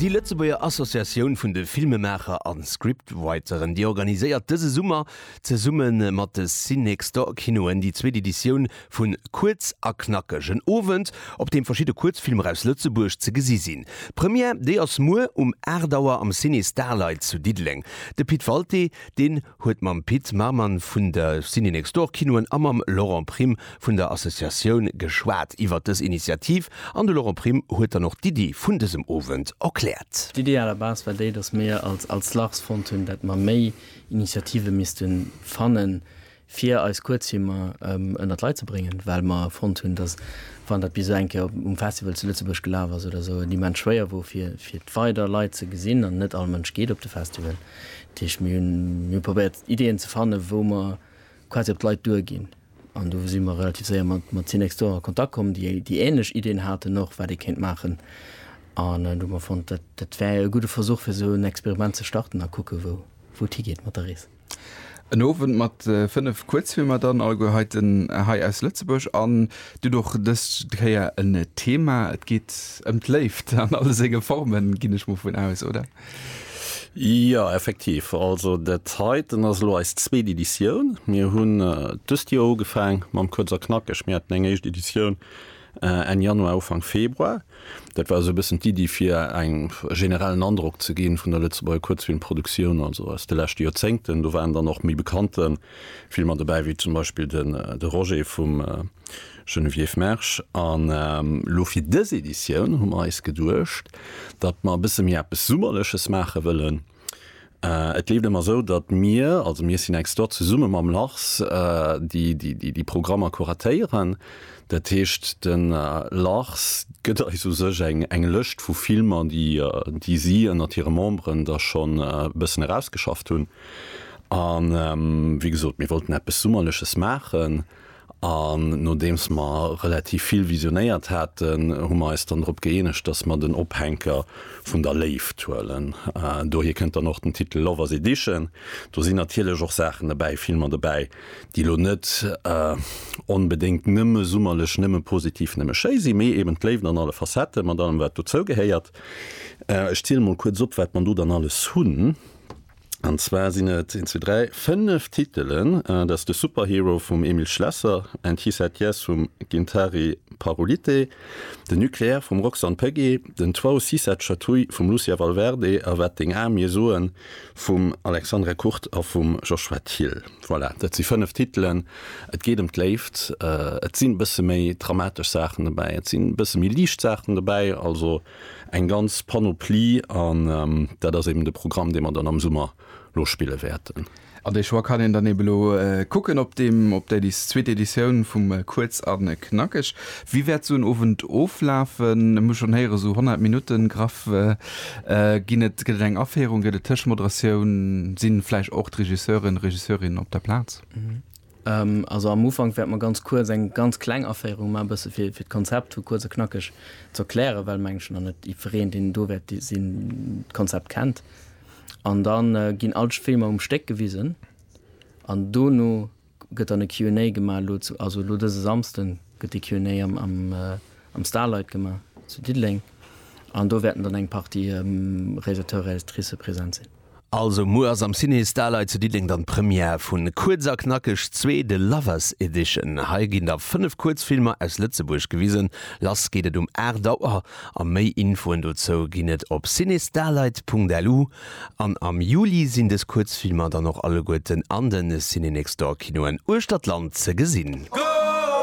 Déi Lëtzebuerger Associatioun vun de Filmemaacher an Scriptwriteren, déi organiséiert dëse Summer zesumme mat de Cinextor Kinoen déi zweet Editioun vu Kuerz a Knackeg, en Owend op deem verschidde Kuerzfilmer aus Lëtzebuerg ze gesi sinn. D'Première, déi ass muer um 8 Auer am Ciné Starlight zu Diddeleng. De Pit Walté, deen. huet mam Pit Marman vun de Ciné-Next-Door-Kinoen a mam Laurent Prim vun der Associatioun geschwat iwwert dës Initiativ an de Laurent Prim huet dann och d'Iddi vun dësem Owend erkläert. D'Iddi à la base war déi, datt mir als als LARS fonnt hunn, dat mer méi Initiative misste fannen, fir eis Kuerzfilmer ënnert d'Leit ze bréngen, well mer fonnt hunn, datt wann dat bis esou eng Kéier um Festival zu Lëtzebuerg gelaf ass oder esou, et immens schwéier wor fir fir d'weider Leit ze gesinn an net all Mënsch geet op de Festival. Dat heescht, mir hu probéiert Ideeën ze fannen, wou mer quasi op d'Leit duerginn. An do si mer relativ séier mat mat Synex Store a Kontakt komm, déi déi änlech Ideeën haten och, wat ee kéint maachen. An do hu mer fonnt, dat dat wär e gudde Versuch, fir esou en Experiment ze starten a kucke wou wou et higeet mat der Rees. En Owend mat fënnef Kuerzfilmer dann, alleguer heiten hei aus Lëtzebuerg. An et gëtt och dës Kéier en Thema. Et geet ëm d'Léift an alle senge Formen, ginn ech mol vun aus, oder? Jo, effektiv. Also dat heiten ass elo eis zweet Editioun. Mir hunn dëst Joer ugefaang mam Kuerz a Knackeg. Mir haten eng éischt Editioun Enn Januar, Ufank Februar. Dat war esou e bëssen d'Iddi fir eng generellen Androck ze ginn vun der Lëtzebuerger Kuerzfilmproduktion, also aus de leschte Joerzéngten. Do waren dann och méi bekannte Filmer dobäi, wéi zum Beispill de Roger vum Geneviève Mersch, An elo fir dës Editioun hu mer eis geduecht, datt mer e bësse méi eppes Summerleches maache wëllen. Et leeft ëmmer esou, datt mir, also mir Synex Stot, zesumme mam Lars déi Programmer kuratéieren. Dat heescht de Lars gëtt eis u sech eng Lëscht vu Filmer, déi si ënnert hire Memberen da schonn e bëssen erausgeschafft hunn. A wéi gesot, mir wollten eppes Summerleches maachen. An nodeems mer relativ vill visionéiert haten, hu mer eis dann drop gëeenegt, dass mer den Ophänker vun der Léift huelen. Dohier kënnt dann och den Titel Lovers Edition. Do sinn natierlech och Saachen dobäi, Filmer dobäi, déi elo net onbedéngt nëmme summerlech, nëmme positiv, nëmme schéi sinn, mee eben d'Léift an alle Facetten, mat allem, wat dozou gehéiert. Ech ziele mol kuerz op, wat mer do dann alles hunn. An zwar sinn et, een, zwee, dräi, fënnef Titelen. Dat ass de Superhero vum Emil Schlesser, And He Said Yes vum Gintari Parolite, de Nucléaire vum Roxanne Pegge, den Toit si cette chatouille vum Lucia Valverde a Wat deng Ae mir soen vum Alexandre Kurt a vum Joshua Thiel. Voilà, dat si fënnef Titelen. Et geet ëm d'Léift. Et sinn e bësse méi dramatesch Saachen dobäi, et sinn e bësse méi liicht Saachen dobäi. Also. Eng ganz Panoplie an dat ass eben de Programm, dee mer dann am Summer lo spille wäerten. An dee Choix kann een dann eben elo kucken op deem, op där zweeter Editioun vum Kuerz a Knackeg. Wéi wäert esou en Owend oflafen? Ech hu schonn héieren, esou 100 Minutten graff ginn et. Gëtt et eng Aféierung, gëtt et Tëschmoderatioun? Si vläicht och d'Regisseuren, Regisseurinnen op der Plaz? Also am Ufank wäerte mer ganz kuerz eng ganz kleng Aféierung maachen, e bësse fir d'Konzept hu kuerz a knackeg ze erklären, well, meng ech, nach net jiddwereen, deen do wäert sinn, d'Konzept kennt. An da ginn all d'Filmer um Stéck gewisen an dono gëtt dann e Q and A gemaach. Elo, also elo dëse Samsden gëtt de Q and A am Starlight gemaach zu Diddeleng an do wäerten dann eng Partie Réalisateur, Réalisatricë present sinn. Also muer ass am Ciné Starlight zu Diddeleng dann d'Première vun Kuerz a Knackeg 2, The Lovers Edition. Hei ginn da 5 Kuerzfilmer aus Lëtzebuerg gewisen. Lass geet et um 8 Auer a méi Infoen dozou ginn et op cinestarlight.lu. An am Juli sinn dës Kuerzfilmer dann och alleguerten an de Ciné Next Door Kinoen uechter d'Land ze gesinn.